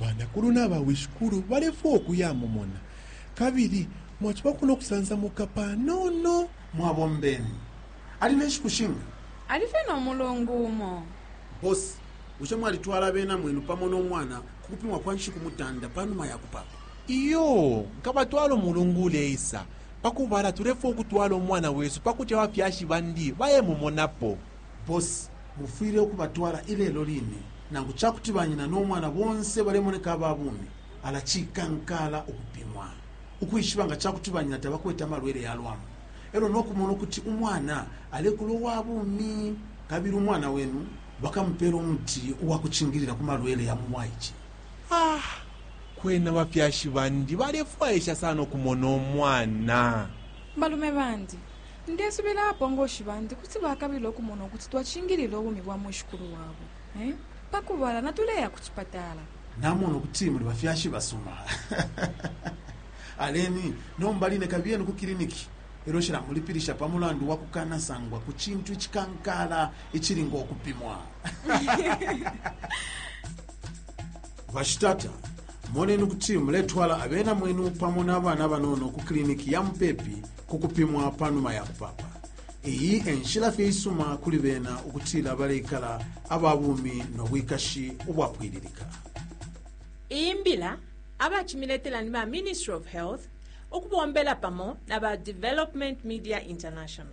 Banakulu na bawishikulu balefwaya ukuyamumona, kabili mwacibako no kusansamuka panono. Mwabombeni. Ali ne nshiku shinga? Ali fye no mulungu umo. Boss, bushe mwalitwala abena mwenu pamo no mwana ku kupimwa kwa nshiku mutanda pa numa ya kupaapa? Iyoo, nkabatwala umulungu uleisa. Pa kubala tulefwaya ukutwala umwana wesu pa kuti abafyashi bandi bayemumonapo. Boss, Mufwile ukubatwala ilelo line. Nangu ca kuti banyina no mwana bonse balemoneka aba bumi, ala cikankala ukupimwa ukwishiba nga ca kuti banyina tabakwete amalwele ya lwambu e lyo no kumona ukuti umwana alekula uwa bumi. Kabili umwana wenu bakamupeela umuti uwa kucingilila ku malwele ya mu bwaice. Ah! Kwena bafyashi bandi balefwaisha sana ukumona umwana. Balume bandi, Ndesubila abapongoshi bandi kuti bakabila ukumona ukuti twacingilila ubumi bwa mwishikulu wabo. Pa kubala, natuleya ku cipatala. Namona ukuti muli bafyashi basuma. Aleni nomba line kabiyeni ku kiliniki ilyo nshilamulipilisha pa mulandu wa kukanasangwa ku cintu icikankaala icili ngo kupimwa. Bashitata, moneni ukuti muletwala abena mwenu pamo na bana banono ku kiliniki ya mupepi ku kupimwa pa numa ya kupapa iyi enshila fye isuma kuli bena ukutila baleikala aba bumi no bwikashi ubwapwililika iyi mbila abacimiletela ni ba ministry of health ukubombela pamo na ba development media international